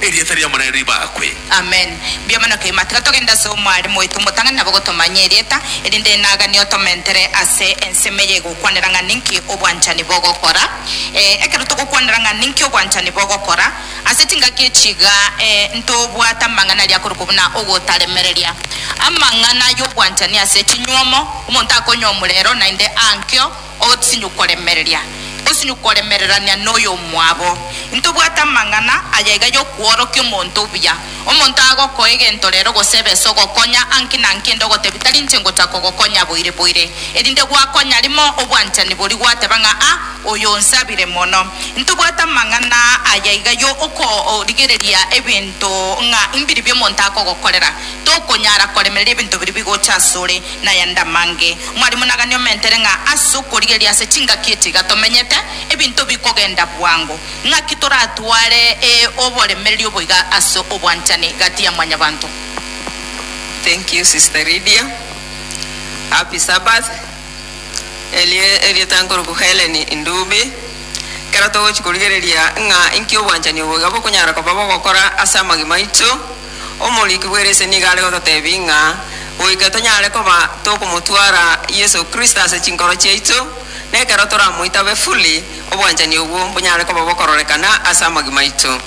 Erieta ri'Omonene ribakwe. Amen. Mbuya mono kegima. Tiga togende ase omwarimu oito omotang'ani nabo gotomanye erieta, erinde enagani otomentere ase ensemo eye egokwanera ng'a ninki obwanchani bogokora. Eh, ekero togokwanera ng'a ninki obwanchani bogokora, ase chingaki echi iga eh, ntobwate amang'ana aria akorokwa buna ogotaremereria. Amang'ana ay'obwanchani ase chinyuomo, omonto akonya omurero naende ankio, Osinye koremereria, osinye koremererania noyomwabo. Intobwate amang'ana aya iga yokworokia omonto obuya. Omonto agokoa egento rero gose ebesa ogokonya anki na anki ende ogotebia tari inche ngocha kogokonya boire boire. Erinde gwakonya rimo obwanchani boria gwateba ng'a a oyo onsabire mono. Intobwate amang'ana aya iga yo okorigereria ebinto ng'a imbiribia omonto akogokorera. Tokonyara koremereria ebinto biria bigocha asore. Naye Ndamange, Mwarimu nagani omentere ng'a ase okorigereria ase chingaki echi iga tomenyete, ebinto bikogenda bwango. Ng'aki toratware ee oboremereri oboiga ase obwanchani gati ya mwanyabanto? Thank you sister Lydia. Happy Sabbath. Erio erieta nkoroku Hellen Ndubi. Ekero togochi korigereria ng'a inki obwanchani oboiga bokonyara koba bogokora ase amagima aito, Omoriki bw'eresia nigo are gototeebia ng'a goika tonyare koba tokomotwara Yeso Kristo ase chinkoro chiaito, na ekero toramoitabe fully, obwanchani obwo mbonyare koba bokororekana ase amagima aito.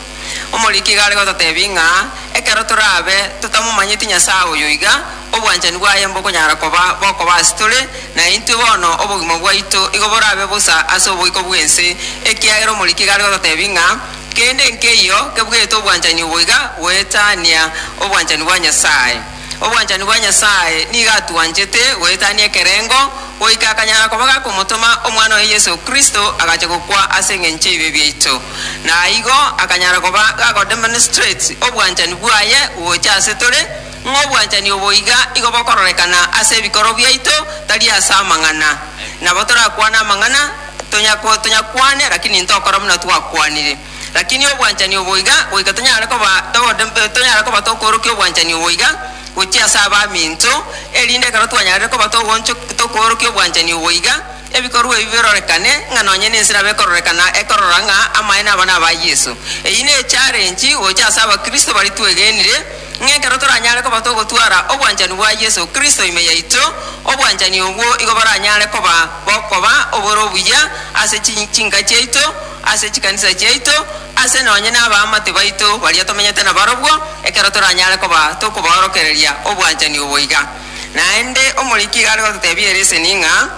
Omoriki iga are gototeebia ng'a ekero torabe totamomanyeti Nyasae oyo iga, obwanchani bwaye mbokonyara koba bokoba ase tore, na intwe bono obogima bwaito igo borabe bosa ase oboiko bw'ense, ekiagera omoriki iga are gototeebia ng'a Kende nkeiyo kebugete obwanchani obo iga goetania obwanchani bwa Nyasae. Obwanchani bwa Nyasae nigo atwanchete goetania ekerengo, goika akanyara koba gakomotoma Omwana oye Yeso Kristo agacha gokwa ase engencho y'ebibe biaito, na igo akanyara koba gakodemonstrate obwanchani bwaye gocha ase tore, ng'a obwanchani obo iga igo bokororekana ase ebikorwa biaito, tari ase amang'ana. Nabo torakwane amang'ana. Tonyakwa tonyakwane, lakini ntokora buna twakwanire. Lakini obwanchani obo iga goika tonyare koba togode tonyare koba tokoorokia obwanchani obo iga gochia ase abaminto, erinde ekero twanyarire koba togooncho tokoorokia obwanchani obo iga, ebikorwa ebi birorekane ng'a nonye nense nabo ekororekana ekorora ng'a amaene aba naba Yeso. Eyio ne echarenchi gocha ase abakristo baria twegenire, ng'a ekero toranyare koba togotwara obwanchani bwa Yeso Kristo ime yaito, obwanchani obwo igo boranyare koba bokoba oboro obuya ase chi, chinka chiaito, ase chikanisa chiaito, ase nonye n'abaamate baito baria tomenyete nabarobwo, ekero toranyare koba tokobaorokereria obwanchani obo iga. Naende omoriki iga are gototebia ereseni ng'a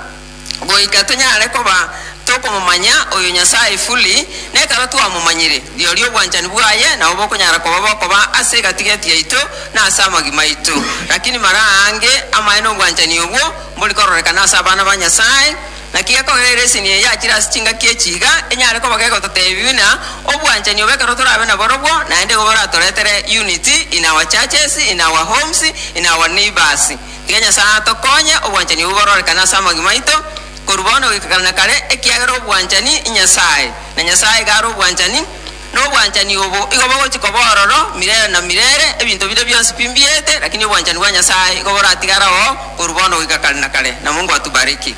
goika tonyare koba tokomomanya oyo Nyasae fully, nekero twamomanyire, rirorio obwanchani bwaye nabo bokonyara koba bokoba ase egati-gati yaito na ase amagima aito. Lakini mara aange amaene obwanchani obwo, Mbori kororekana ase abana ba Nyasae, naki gekogera ere esini eye yachire ase chingaki echi iga enyare koba gegototeebia buna obwanchani obo ekero torabe naborobwo, naende igo boratoretere unity in our churches, in our homes, in our neighbours. Tiga Nyasae atokonye obwanchani obwo bororekane ase amagima aito korwa bono goika kare na kare, ekiagera obwanchani inyasae, na Nyasae iga are obwanchani. nobwanchani obo, igo bagochia koba ororo mirere na mirere, ebinto bire bionsi pi mbiete, lakini obwanchani bwa Nyasaye igo boratigare oo korwa bono goika kare na kare. Na Mungu atubariki.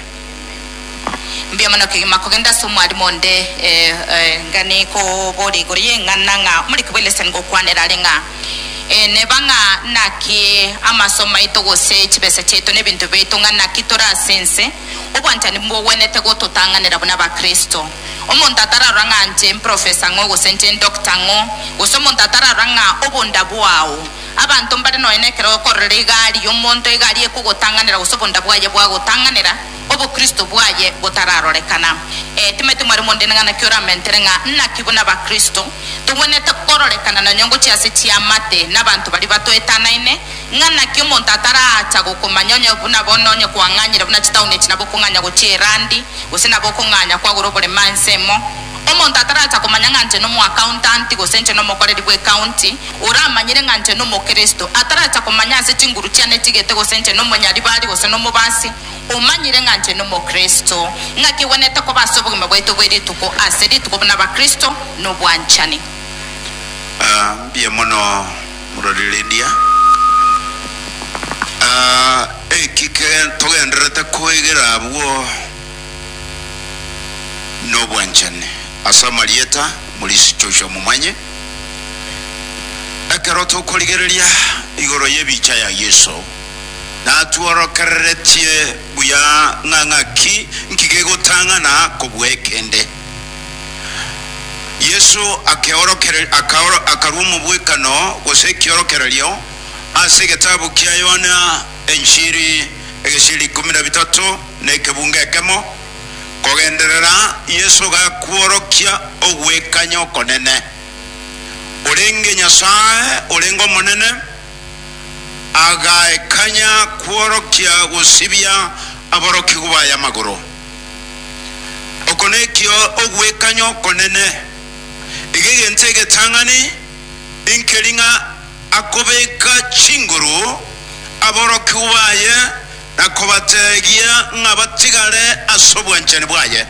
Mbuya mono kegima kogenda ase omwarimu onde. Ee, gani koboria igoro y'eng'ana ng'a omoriki bwe lesson gokwanera are ng'a ee neba ng'a naki amasomo aito gose chibesa chiaito na ebinto biaito ng'a naki tore ase ense, obwanchani mbogwenerete gototang'anera buna Abakristo. Omonto atararora ng'a nche emprofesa ng'o gose nche endokta ng'o, gose omonto atararora ng'a obonda bwao. Abanto mbare nonya nekero okororera egari y'omonto, egari ekogotang'anera gose obonda bwaye bwagotang'anera, obokristo bwaye botararorekana. Ee, timanyete mware mondene ng'a naki oramentere ng'a naki buna abakristo togwenerete kororekana nonya ngochia ase chiamate nabanto baria batoetanaine, Ng'a naki omonto ataraacha gokomanya onye buna bono onye kwang'anyire buna chitauni echi nabo okong'anya gochia Irandi, gose nabo okong'anya kwagora oborema ense emo. Omonto ataraacha komanya ng'a nche nomoakauntanti gose nche nomokoreri bw'ekaunti, oramanyire ng'a nche nomokristo, ataracha komanya ase chinguru chiane chigete gose nche nomonyaribari gose nomobasi, omanyire ng'a nche nomokristo. Ng'aki egwenerete koba ase obogima bwaito bwe rituko ase rituko buna abakristo nobwanchani. Mbuya mono Mororereria, aa, eki ke togendererete koegera abwo nobwanchani ase amarieta morisichosia momanye ekero tokorigereria igoro y'ebicha ya Yeso, natworokereretie buya ng'a ng'aki nki gegotang'ana kobua ekende. Yeso akeorokereria, akaoro, akarua omobwekano, gose ekiorokererio, ase egetabu kia Yohana Enchiri egesieri ikomi na bitato na ekebunga ekemo, Kogenderera Yeso gakworokia ogwekanya okonene, orenge Nyasae orenge omonene, agaekanya kworokia gosibia aborokigwa baye amagoro. Oko nekio ogwekanya okonene, iga egento egetang'ani inkeri ng'a akobeka chinguru aborokigwa baye na kobateegia ng'a batigare ase obwanchani bwaye.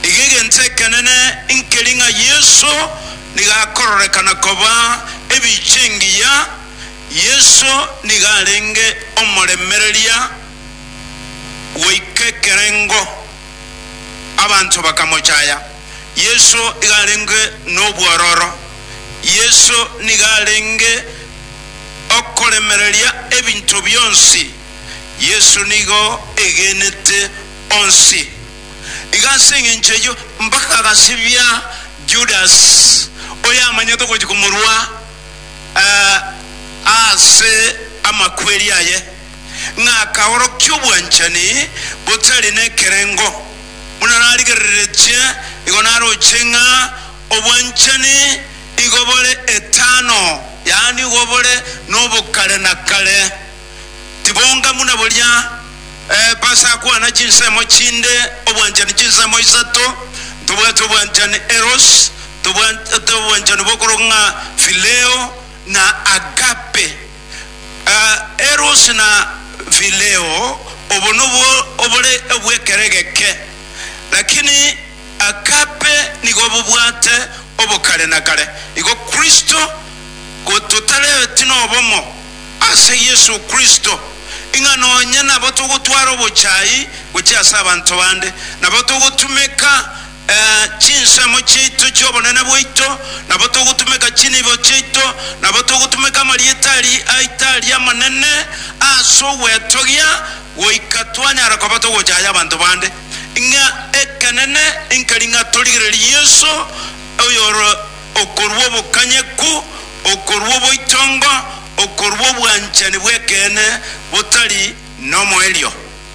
Iga egento ekenene inkeri ng'a Yeso nigo akororekana koba ebiicha engiya. Yeso nigo arenge omoremereria goika ekerengo, abanto bakamochaya. Yeso iga arenge nobwororo, Yeso nigo arenge okoremereria ebinto bionsi, Yeso nigo egenete onsi. Iga ase engencho eyio mpaka agasibia Judas, oyamanyete gochia komorua eh, ase amakweri aye. ng'a akaorokia obwanchani botari nekerengo, buna narigereretie, igo naroche ng'a obwanchani igo bore etano, yaani igo bore nobokare na kare, tibonga buna boria Epasa akwana chinsemo chinde, obwanchani chinsemo isato, ntobwate obwanchani eros, ntobwate obwanchani bokoroka ng'a phileo, na agape. Erosi na Phileo, obo nobwo obore obw'ekere geke, lakini Agape nigo bobwate obokare na kare. Igo Kristo, gototarebeti nobomo ase Yeso Kristo, ing'a nonye nabo togotwara obochai gochia ase abanto bande, nabo togotumeka chinsemo chiaito chi'obonene bwaito, nabo togotumeka chinibo chiaito, nabo togotumeka amarieta aria aito aria amanene ase ogwetogia, goika twanyara koba togochaya abanto bande. Ng'a ekenene nkeri ng'a torigererie Yeso, oyore okorua obokanyeku, okorua oboitongo, okorua obwanchani bw'ekeene botari nomoerio.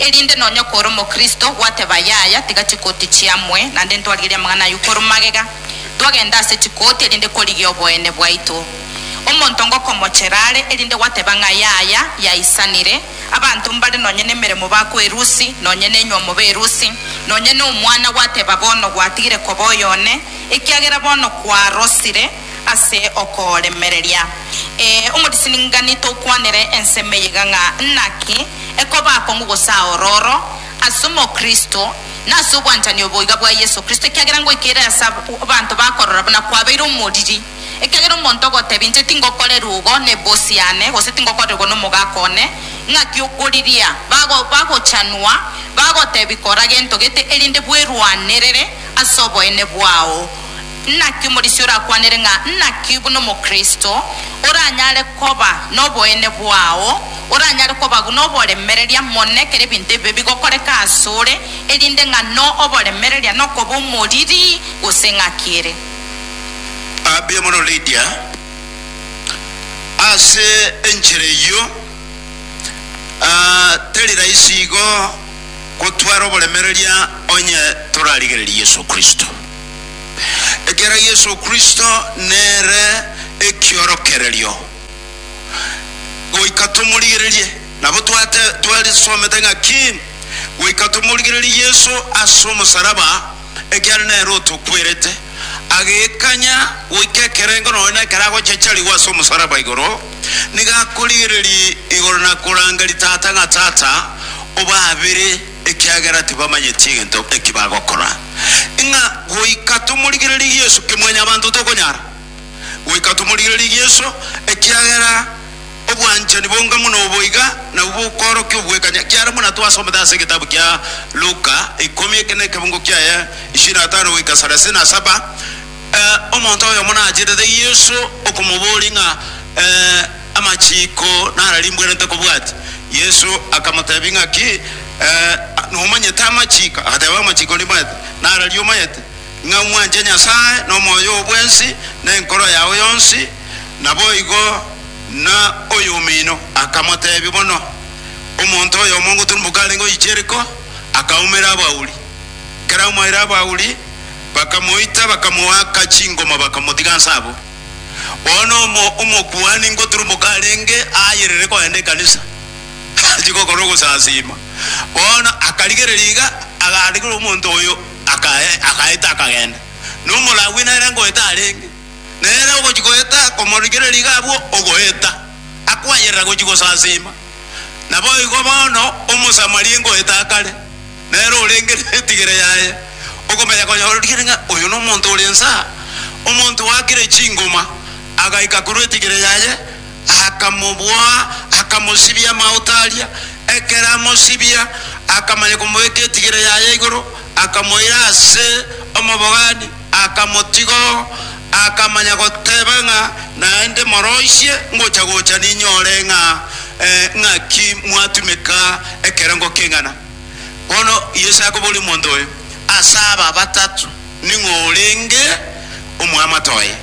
Erinde nonya kore omokristo gwateba yaya tiga chikoti chiamue, naende ntwarigerie amang'ana ayio korwa magega, twagenda ase chikoti erinde korigia oboene bwaito. Omonto ngokomochera are erinde gwateba ng'a yaya yaisanire, abanto mbare nonya nemeremo bakwe erusi, nonya nenywa mobe erusi, nonya nomwana gwateba bono gwatigire koba oyone, ekiagera bono kwarosire, ase okoremereria. Ee, omorisiningani tokwanere ensemo eyega ng'a naki ekoba akong'u gose aororo ase omokristo nase obwanchani oboiga bwa Yeso Kristo, ekiagera ngoika ere ase abanto bakorora buna kwabeire omoriri. Ekiagera omonto ogotebia, Inche tingokorerwa ogo nebosi yane, gose tingokorerwa nomogaka one, ng'aki okoriria? Bago, bagochanwa, bagotebia, Kora gento gete, erinde bwerwanerere ase oboene bwao. Naki omorisia orakwanere ng'a naki buna Omokristo oranyare koba noboene bwao, oranyare koba buna oboremereria mono ekero ebinto ebibe bigokoreka asore, erinde ng'ano oboremereria nokoba omoriri gose ng'aki ere. Ah, mbuya mono Lydia. Ase enchera eyio, ah, teri rahisi igo gotwara oboremereria onye torarigereria Yeso Kristo. Ekiagera Yeso Kristo nere ekiorokererio, goika tomorigererie. Nabo twate twarisomete ng'aki goika tomorigererie Yeso ase omosaraba, ekiagera nere otokwerete, agekanya goika ekerengo nonya na ekero agochacharigwa ase omosaraba igoro, nigo akorigereria igoro na koranga ritata ng'a Tata, obaabere. ekiagera tibamanyeti egento eki bagokora. Ng'a goika tomorigererie Yeso, Kimwanyabanto tokonyara goika tomorigererie Yeso, ekiagera obwanchani bonga mono oboiga nabwo bokoorokia obwekanya, ekiagera buna twasomete ase egetabu kia Luka ikomi eke nekebugu kiaye ishirini na tano goika sarasini na saba, eh, omonto oyomo nacherete Yeso okomoboria ng'a, eh, Amachiiko nararimbwerete kobwati. Yesu akamotebia, Ng'aki nomanyete amachiiko? Agateba, Amachiiko nimanyete, nararia omanyete, ng'a mwanche Nyasae nomoyo oo bwensi, na enkoro yao yonsi, naboigo na oyomino. Akamotebia, Bono omonto oyomo ngoturumboka arenge oyicha Yeriko, akaumera abauri. Ekero amoeire abauri, bakamoita, bakamoaka chingoma, bakamotiga nse abwo. Bono omo- omokuani ngoturumoka arenge aayerere kogenda ekanisa, achie gokora ogosasiima. Bono akarigereria iga, agarigerwa omonto oyo, akae- agaeta akagenda. Na Omolawi nere ngoeta arenge, nere ogochia goeta komorigereria iga abwo ogoeta, akwayerera gochia gosasiima. Naboigo bono Omosamaria ngoeta akare, nere orenge netigere yaye, okomanya konya origereria ng'a oyo nomonto ore inse aa. Omonto oakire chingoma agaika korwa etigere yaye, akamoboa, akamosibia amaoto aria. Ekero amosibia, akamanya komoika etigere yaye igoro, akamoira ase omobogani, akamotiga oo, akamanya goteba ng'a naende moroisie ngocha gocha ninyore ng'a ng'aki mwatumeka ekerengo king'ana. Bono Yeso akoboria omonto oyo, Ase aba batato ning'o orenge omwamate oye?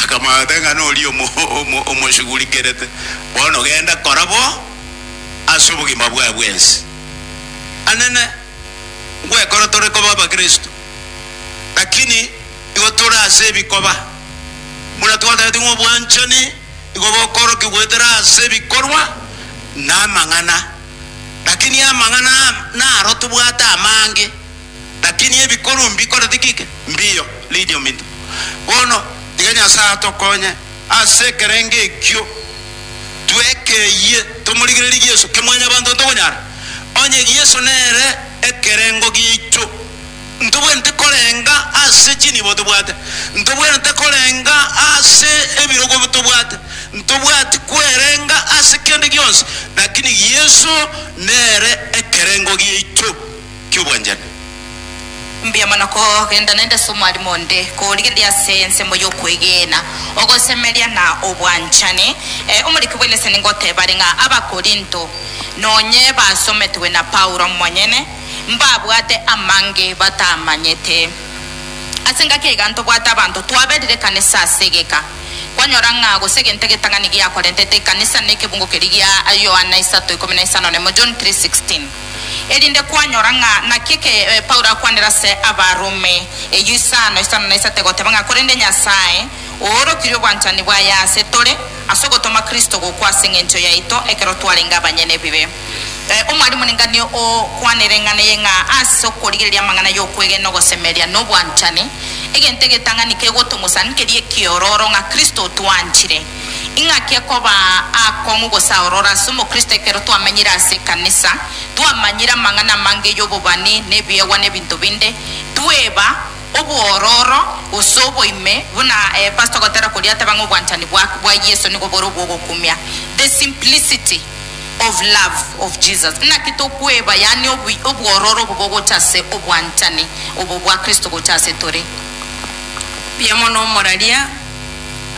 Akamwabera ng'a noria omo- omoshugurikerete. Bono genda, kora bo ase obogima bwaye bwensi. Anene, ngwekora tore koba abakristo, lakini igo tore ase ebikoba. Buna twatagete ng'a obwanchani igo bokorokigwa goetera ase ebikorwa na amang'ana. Lakini amang'ana naro tobwate amange, lakini ebikoro mbikore tikike mbiyo. Read your minto. Bono tiga Nyasae atokonye ase ekerengo ekio twekeyie tomorigererie Yeso, ke Mwanyabanto ntokonyara. Onye Yeso nere ekerengo giaicho, ntobwenerete korenga ase chinibo tobwate, ntobwenerete korenga ase ebirogo tobwate, ntobwati kwerenga ase kende gionsi, lakini Yeso nere ekerengo giaicho ki'obwanchani. Mbuya mono kogenda naende ase omwarimo onde, korigereria ase ensemo y'okwegena, ogosemeria, na obwanchani. E, omoriki bw'ense ningotebare ng'a Abakorinto nonye basometwe na Paulo omonyene. mbabwate amange batamanyete. Ase engaki aiga ntobwate abanto twaberire ekanisa ase egeka. Kwanyora ng'a gose egento egetang'ani giakorentete ekanisa nekebungo keria gia Yohana isato ikomi na isano nemo, John 3:16. Erinde kwanyora ng'a naki eke Paulo akwanire ase Abarumi eyio isano, isano na isato egoteba ng'a korende Nyasae oorokirie obwanchani bwaye ase tore ase ogotoma Kristo gokwa ase engencho yaito ekero twarenge abanyene ebibe. Eh, omwalimu neng'ani okwana ereng'ana eye ng'a ase okorigereria amang'ana y'okwegena ogosemeria nobwanchani, egento egetang'ani kegotomosan keria ekiororo ng'a Kristo otwanchire. Ing'aki ekoba akong'u gose aororo ase omokristo ekero twamenyire ase ekanisa, twamanyire amang'ana amange y'obobani na ebiegwa na ebinto binde, tweba obwororo gose oboime, buna eh, pastor gotera koria ateba ng'a obwanchani bwa bwa Yeso nigo bore obwogokumia, the simplicity. of love of Jesus. Naki tokweba, yaani obu, obwororo obo bogocha ase obwanchani obo bwa Kristo gocha ase tore. Mbuya mono omoraria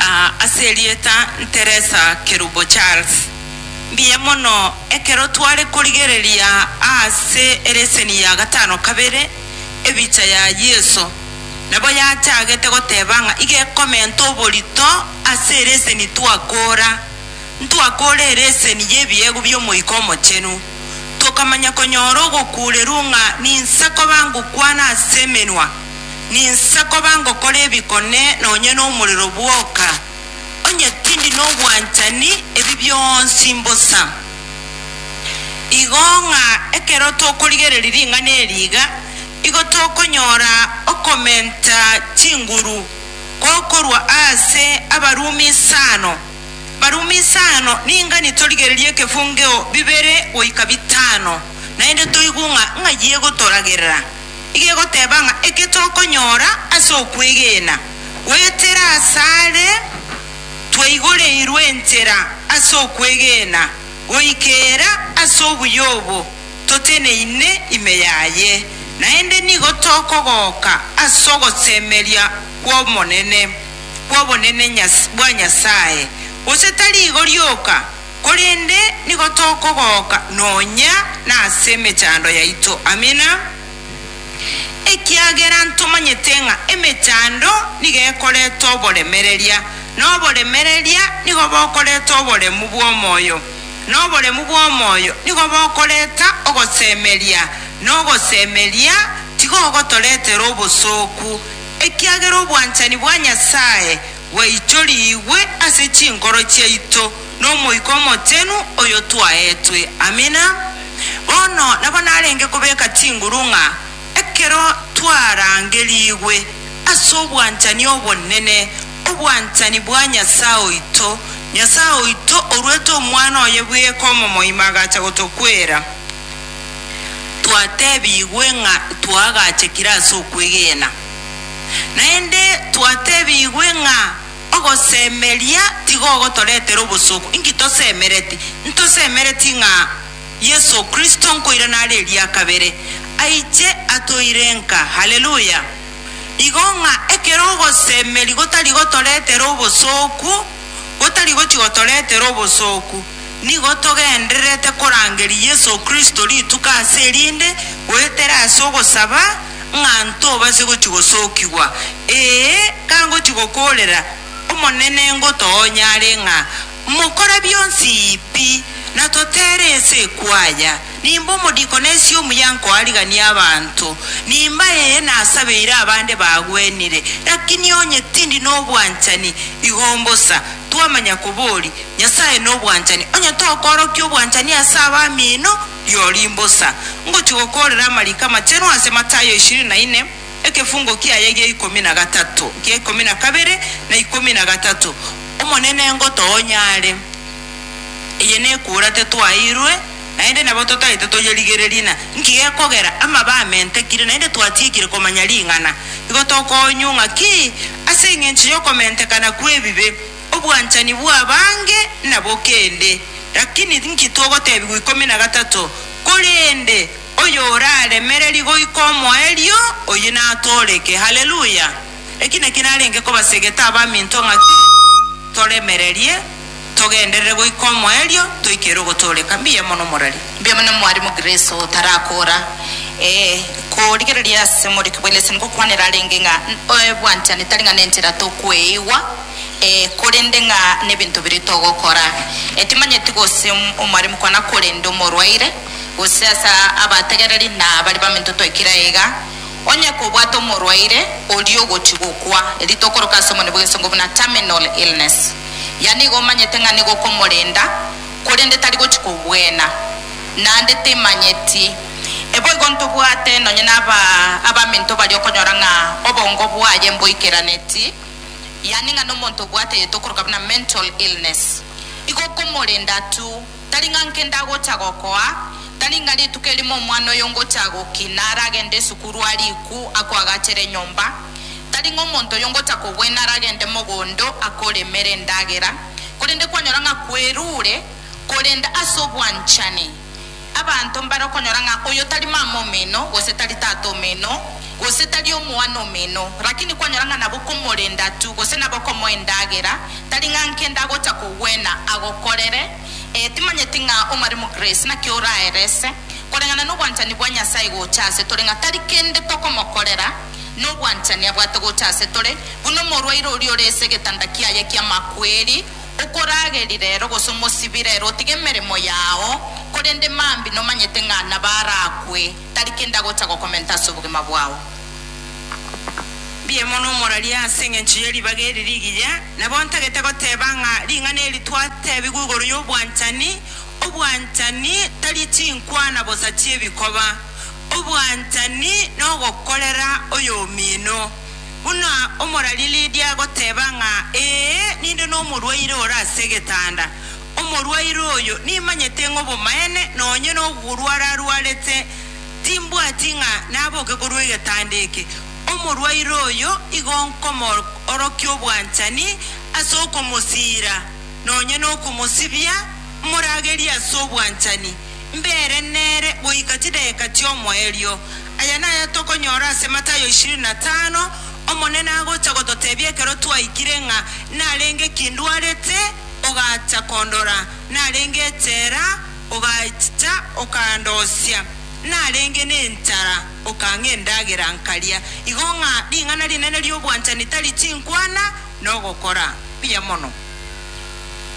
ah, ase erieta nteresa kerubo Charles. Mbuya mono ekero tware korigereria aase ereseni ya gatano kabere ebicha ya Yeso, nabo yachagete goteba ng'a iga ekomenta oborito ase ereseni twakora. ntwakoorere eseni y'ebiegwa bi'Omoika Omochenu, tokamanya konyora ogokuurerwa ng'a ninsa koba ngokwana ase emenwa, ninsa koba ngokora ebikone nonya nomorero bwoka, onye tindi nobwanchani, ebi bionsi mbosa. Igo ng'a ekero tokorigereria ring'ana eri iga, igo tokonyora okomenta chinguru gokorwa aase Abarumi isano, Barumi isano, ninga nitorigererie ekefungeo bibere goika bitano, naende toigwe ng'a ng'ai egotoragerera. Iga egoteba ng'a eke tokonyora ase okwegena, goetera asare twaigoreirwe enchera ase okwegena goikera ase obuya obo toteneine ime yaye, naende nigo tokogoka ase ogosemeria kw'Omonene. bw'obonene Nyas- bwa Nyasae, gose tari igo rioka, korende nigo tokogoka nonya nase emechando yaito. Amina. Ekiagera ntomanyete ng'a emechando nigo ekoreta oboremereria, na oboremereria nigo bokoreta oboremu bw'omoyo, na oboremu bw'omoyo nigo bokoreta ogosemeria, na ogosemeria tigogotoretera obosooku, Ekiagera obwanchani bwa Nyasae bwaichorigwe ase chinkoro chiaito n'Omoika Omochenu oyo twaetwe. Amina. Bono nabo narenge kobeka chinguru ng'a ekero twarangerigwe ase obwanchani obonene, obwanchani bwa Nyasae oito, Nyasae oito oruete Omwana oye bweka omomoima agacha gotokwera. twatebigwe ng'a twaagachekire ase okwegena. Naende twatebigwe ng'a ogosemeria tigogotoretera obosooku. Inki tosemereti? Ntosemereti ng'a Yeso Kristo nkoirana are eria kabere, aiche atoire nka. Haleluya! Igo ng'a ekero ogosemeria gotari gotoretera obosooku, gotari gochi gotoretera obosooku, Nigo togendererete korangeria Yeso Kristo rituko ase erinde, goetera ase ogosaba, ng'a ntobase gochia gosokigwa. Ee, kangochia gokoorera, Omonene ngotoonye are ng'a mokore bionsi pi, na totere ense ekwaya. Nimbe omodikoni ase omuya nkoarigania abanto, nimbe ee nasabeire abande bagwenire, lakini onye tindi nobwanchani, igo mbosa. Twamanya kobori. Nyasae nobwanchani, onye tokoorokia obwanchani ase abamino, rirorio imbosa. Ngochia gokoorera amariko amachenu ase Matayo ishirini na ine, ekefungo kiaye gia ikomi na gatato, gia ikomi na kabere, na ikomi na gatato, Omonene ngotoa onyare, eye nekura tetwaeirwe, naende nabo totaete toyerigererie, na nki gekogera amabe amentekire, naende twatiekire komanya ring'ana? Igo tokoonywa ng'aki ase engencho y'okomentekana kw'ebibe? Obwanchani bw'abange nabo kende, lakini inki togotebigwa ikomi na gatato? Korende oyoraremererie goika omoerio, oyio natooreke. Haleluya! Eki nakio narenge kobasegete abaminto ng'a toremererie, togenderere goika omoerio, toikere ogotooreka. Mbuya mono morari. Mbuya mono Mwarimu Grace otarakora. Ee, korigereria ase omoriki bwa Lesson gokwanera arenge ng'a obwanchani tari ng'a nenchera tokweigwa, Ee, korende ng'a nebinto biria togokora? Etimanyeti gose omoremu kona korende omorwaire, gose ase abategereri na baria baminto twaikire aiga. Onye kobwate omorwaire oria ogochia gokwa, erio tokoroka ase omonwe bw'egesongo buna terminal illness. Yaani igo omanyete ng'a nigo okomorenda, korende tari gochia kobwena. Naende timanyeti. Eboigo ntobwate nonye naba abaminto baria okonyora ng'a obongo bwaye mboikeraneti. yaani ng'a nomonto obwateete okoroka buna mental illness, igo okomorenda tu, tari ng'a nkende agocha gokoa, tari ng'a rituko erimo omwana oyo ngocha gokina aragende esukuru arikwu akoagachere enyomba, tari ng'a omonto oyo ngocha kobwena aragende mogondo akoremere endagera, korende kwanyora ng'a kwerure, korende ase obwanchani. Abanto mbare okonyora ng'a oyo tari mama omino, gose tari tata omino, gose tari omwana omino, rakini kwanyora ng'a nabokomorenda tu, gose nabokomoa endagera, tari ng'a nkende agocha kogwena agokorere, ee, timanyeti ng'a omare Mugrace, naki oraerese, koreng'ana nobwanchani bwa Nyasae gocha ase tore, ng'a tari kende tokomokorera, nobwanchani abwate gocha ase tore, buna omorwaire oria ore ase egetanda kiaye ki'amakweri, Okorageri rero gose omosibi rero otige emeremo yao, korende mambi nomanyete ng'a nabarakwe, tari kende agocha gokomenta ase obogima bwao. Mbiaimo nomoraria ase engencho ye ribaga eri rigiya, nabo ntagete goteba ng'a ring'ana eri twatebigwa igoro y'obwanchani, Obwanchani tari chinkwana bosa chi'ebikoba, obwanchani nogokorera oyomino. Buna omorari Lidia agoteba ng'a ee, ninde nomorwaire ore ase egetanda. Omorwaire oyo nimanyete ng'a obomaene nonye noborware arwarete timbwati ng'a naboke korwa egetanda eke. Omorwaire oyo igo nkomoorokia obwanchani ase okomosiira nonye nokomosibia moragerie ase obwanchani, mbere nere goika chidageka chi'omoerio. Aya naya tokonyora ase Matayo ishirini na tano, Omonene agocha gototebia ekero twaikire ng'a narenge ki ndwarete, ogacha kondora, narenge echela, ogachicha okandosia, narenge nenchara, okang'a endagera, nkaria. Igo ng'a ring'ana rinene ri'obwanchani tari chinkwana, na ogokora buya mono.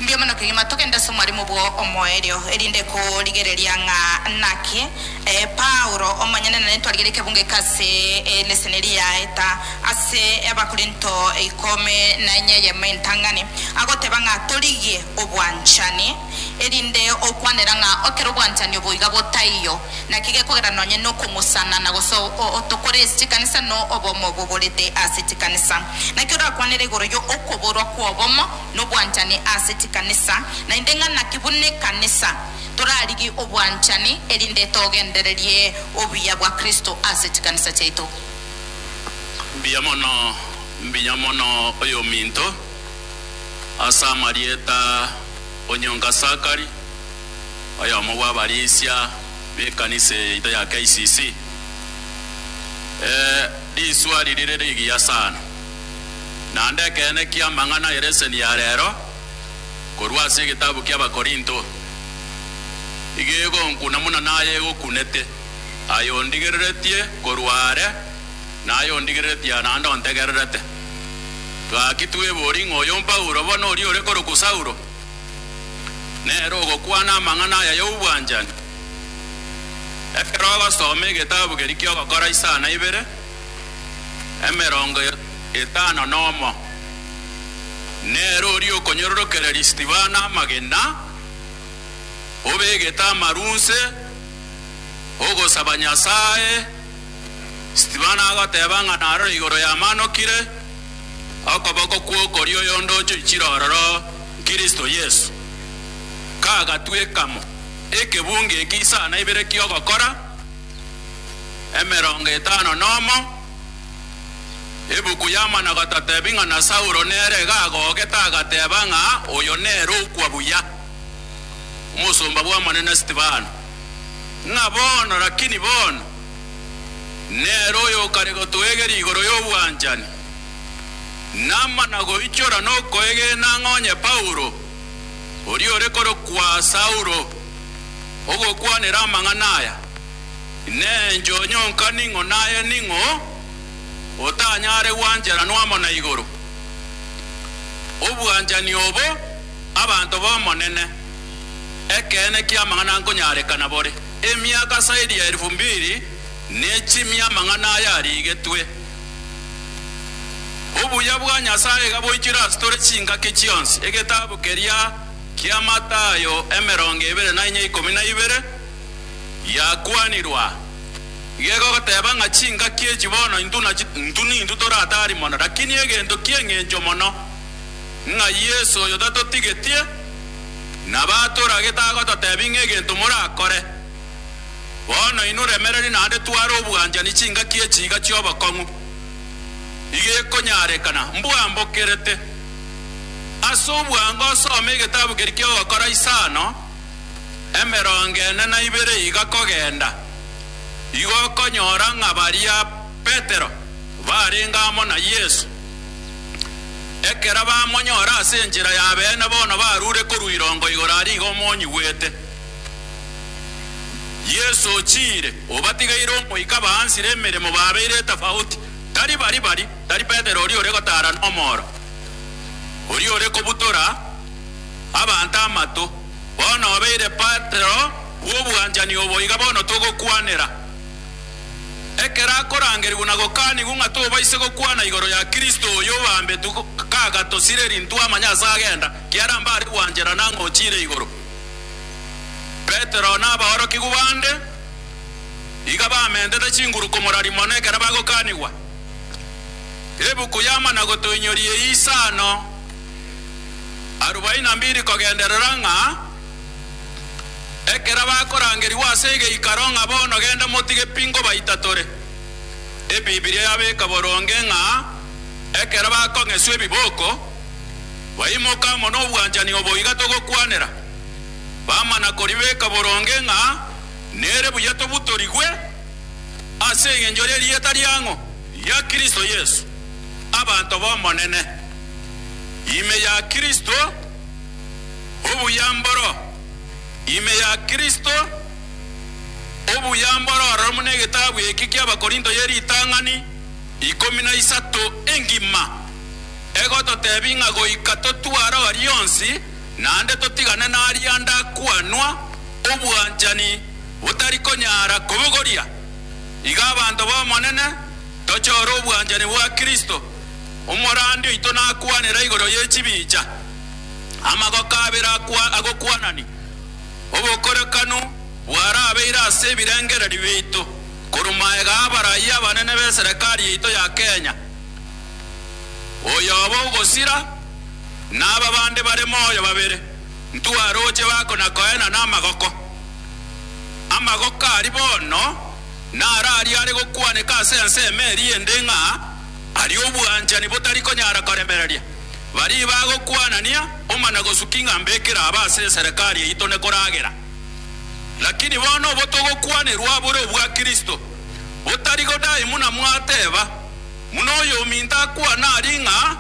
Mbuya mono kegima togende ase omwaremo bwo omoerio, erinde korigereria ng'a naki. Ee, Paulo, omonyene nere twarigereria ekebungo eke ase eleseni eria yaeta ase Abakorinto ikomi na enye eyemo entang'ani, agoteba ng'a torigie obwanchani. erinde okwanera ng'a okera obwanchani oboiga botaiyo, naki gekogera nonye nokomosana na gose otokore ase chikanisa no obomo bogorete ase chikanisa. Naki orakwanere igoro yo okoborwa kw'obomo nobwanchani ase chikanisa, naende ng'a naki buna ekanisa torarigi obwanchani erinde togendererie obuya bwa Kristo ase chikanisa chiaito. Mbuya mono, mbuya mono oyominto. ase amarieta o nyonga Sakari, oyomo bw'abarisia b'ekanisa yaito ya KCC. Ee, riswari rire rigiya sana. Naende ekeene ki'amang'ana ye leseni ya rero korwa ase egetabu ki'Abakorinto, iga egonkuna buna naye egokunete, aye ondigereretie korwa are, naye ondigereretie aa naende ontegererete. Gaki twebori ng'a oyo Paulo, bono oria ore korokwa Saulo, nere ogokwana amang'ana aya y'obwanchani. Ekero ogosoma egetabu keria ki'ogokora isaa na ibere emerongo etano nomo, nere oria okonyororokereria Stefano amagena, obegete amarunse, ogosaba Nyasae, Stefano agoteba ng'a narore igoro yamanokire, okoboko kw'okorio oyonde ochoichire ororo, Kristo Yeso. Kagatwekamo ekebunga eke isaa na ibere ki'ogokora emerongo etano nomo, ebuku yamana gototebi ng'a na Saulo nere gagogete agateba ng'a oyo nere okwa buya, omosomba bw'Omonene Stefano. ng'a bono, lakini bono, nere oyokare gotoegera igoro y'obwanchani, namana goichora nokoegena ng'a onye Paulo, oria ore korokwa Saulo, ogokwanera amang'ana aya, nenchoo nyonka ning'o naye ning'o, otanyare gwancheranwa amo na igoro. Obwanchani obo. Abanto b'Omonene, ekeene ki'amang'ana nkonyareka nabore. Emiaka zaidi ya elfu mbili nechimie amang'ana aya arigetwe. Obuya bwa Nyasaye iga boichire as'tore chingaki chionsi. Egetabu keria kia Mathayo emerongo ebere na inya ikomi na ibere giakwanirwa gegogoteba ng'a chingaki echi bono intu nachi intu nintu toratari mono, lakini egento ki'engencho mono. ng'a Yeso oyo tatotigetie, nabo atoragete agototebi ng'a egento morakore. Bono inwe remereri naende tware obwanchani chingaki echi iga chi'obokong'u, iga ekonyarekana mbwambokerete. Ase obwango soma egetabu keria ki'ogokora isano emerongo ene na ibere iga kogenda, igo okonyora ng'a baria Petero barenge amo na Yeso. Ekero bamonyora ase enchera y'abeene bono barure korwa irongo igoro aria iga omonyigwete. Yeso ochiire, obatigeire omoika baansire emeremo babeire etafauti, tari bari bari, tari Petero oria ore gotaara nomooro, oria ore kobutora abanto amato, bono obeire Petero bw'obwanchani obo iga bono togokwanera. Ekero akorangerigwa na gokanigwa ng'a tobaise gokwana igoro ya Kristo oyo obaambetu kagatosire rintwe amanye ase agenda, kiara mbare gwanchera nang'o ochiire igoro. Petero na abaorokigwa bande iga bamentete chinguru komorari mono ekero bagokanigwa. Ebuku y'amanago toinyorie isano arubaini na mbiri kogenderera ng'a. Ekero bakorangerigwa ase egeikaro ng'a bono genda motige pi ngobaitatoree, Ebibilia yabeka boronge ng'a ekero bakong'eswa ebiboko, baimoke amo nobwanchani obo iga togokwanera, bamana koribeka boronge ng'a nere buya tobutorigwe ase engencho y'erieta riang'o ria Kristo Yesu, abanto b'Omonene, ime ya Kristo. obuya mboro ime ya Kristo, obuya mboro ororo buna egetabu eke ki'Abakorinto ye ritang'ani ikomi na isato engima, egototebia ng'a goika totware o rionsi, naende totigane naria ande akwanwa, obwanchani botari konyara kobogoria. Iga abanto b'Omonene, tochore obwanchani bwa Kristo, omorandi oito nakwanera igoro ye chibicha. Amagoko abere akwa- agokwanani obokorekanu bwarabeire ase ebirengererio biaito korwa maega 'abarayia abanene b'eserekari yaito ya Kenya, oyobo ogosira na aba bande bare moyo babere ntwaroche bakona koena na amagoko. Amagoko aria bono nararia are gokwaneka ase ensemo eria ende ng'a aria obwanchani botari konyara koremereria. baria bagokwanania omana gosuki ng'a mbekera aba ase eserekari yaito nekoragera. Lakini bono obo togokwanerwa bore obwa Kristo, botari godai muna mwateba, buna oyominto akwana aria ng'a,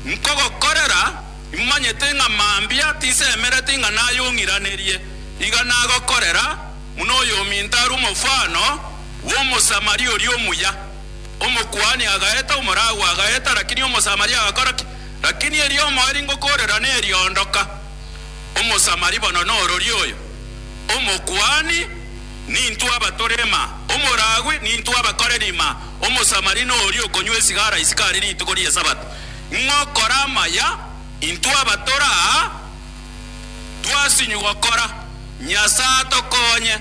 Nkogokorera, imanyete ng'a mambia tisemereti ng'a nayong'iranerie, iga nagokorera, buna oyominto are omofano bw'Omosamaria oria omuya. Omokuani agaeta, omoragua agaeta, lakini Omosamaria agakora ki? Lakini erio omoeri ngokorera neriondoka, Omosamari bono nororia oyo. Omokuani, Nintwe abatore ma, omoragui, Nintwe abakoreri ma, Omosamari noria okonywa esigara isiko are rituko ri'esabato, ng'okora amaya, Intwe abatore aa twasinywa gokora, Nyasae atokonye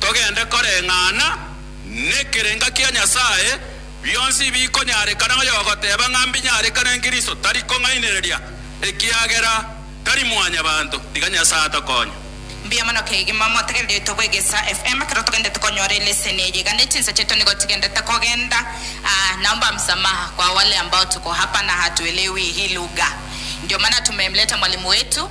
togende koreng'ana. Nekerenga kia Nyasae, bionsi bikonyarekana ng'a yogoteba ng'a mbinyarekane Kristo tari kong'ainereria, ekiagera tari mwanyabanto. Tiga Nyasae atokonye. Mbuya mono kegima motegererete bwegesa FM ekero togendete konyora eleseni eye iga ne chinsa chiaito nigo chigendete kogenda aa naomba msamaha kwa wale ambao tuko hapa na hatuelewi hii lugha ndio maana tumemleta mwalimu wetu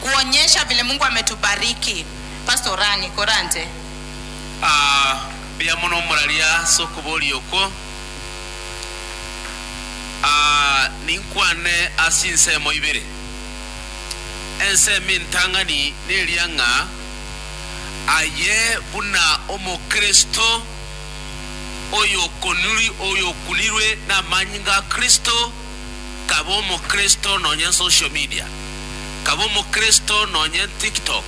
kuonyesha vile Mungu ametubariki. Pastor Rani, korante. Aa, mbuya mono omuraria ase okoboria okwo. Aa, ninkwane ase insemo ibere. Ensemo entang'ani neria ng'a aye buna Omokristo oyokunirwe namanyinga a Kristo, kaba omokristo nonye nsocial media, kaba omokristo nonye ntiktok,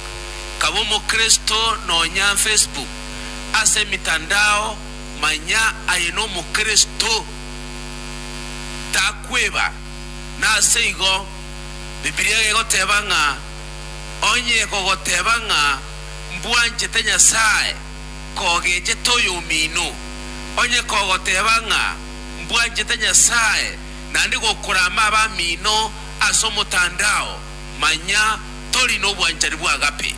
kaba omokristo nonya nfacebook, ase emitandao manya aye nomokristo, takweba. Naseigo Bibilia egoteba ng'a onye kogoteba ng'a mbwanchete Nyasaye kogechete oyomino, onye kogoteba ng'a mbwanchete Nyasae naende gokorama abamino ase omotandao, manya tori nobwanchani bw'agape.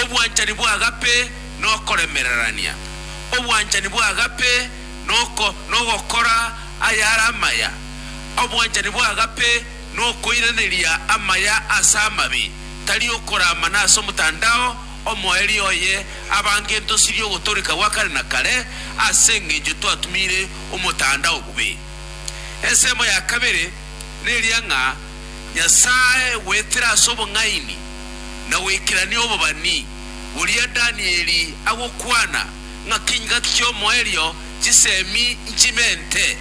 Obwanchani bw'agape nokoremererania. Obwanchani bw'agape noko nogokora ayare amaya. Obwanchani bw'agape nokoiraneria amaya ase amabe, tari okorama nase omotandao, Omoerio oye abange ntosirie ogotoreka gwa kare na kare ase engencho twatumire omotanda obobe. Ensemo ya kabere neria ng'a Nyasae goetera ase obong'aini na goikerania obobani boria Danieli agokwana ng'a kengaki ki'omoerio chisemi nchimente.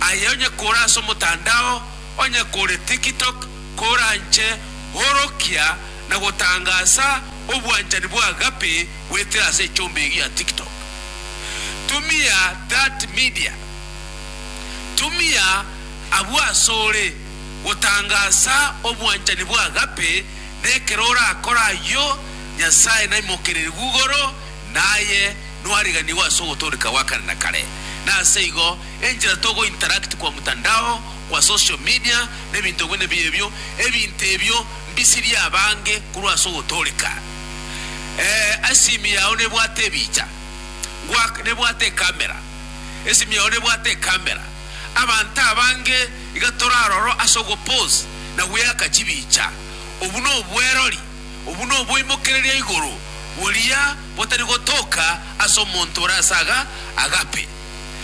Aye onye kore ase omotandao, onye kore TikTok, koranche orokia na gotangaasa obwanchani bwa agape goetera ase echomba eyio ya TikTok. Tumia that media. Tumia abwo asore gotangaasa obwanchani bwa agape na ekero orakore ayio, Nyasae naimokererie Google na aye nwariganigwe ase ogotooreka gwa kare na kare. Na ase igo, enchera togo interact kwa mtandao, kwa social media, na ebinto bwene bia ebio, ebinto ebio Bisirie abange korwa ase ogotooreka, ee, asimi yao nebwate ebiicha, ngwak, nebwate ekamera, esimi yao nebwate ekamera. Abanto abange iga toraroro ase ogopose na gweaka chibiicha. Obwo nobwerori, obwo noboimokereria igoro boria botari gotoka ase omonto ore ase aga agape.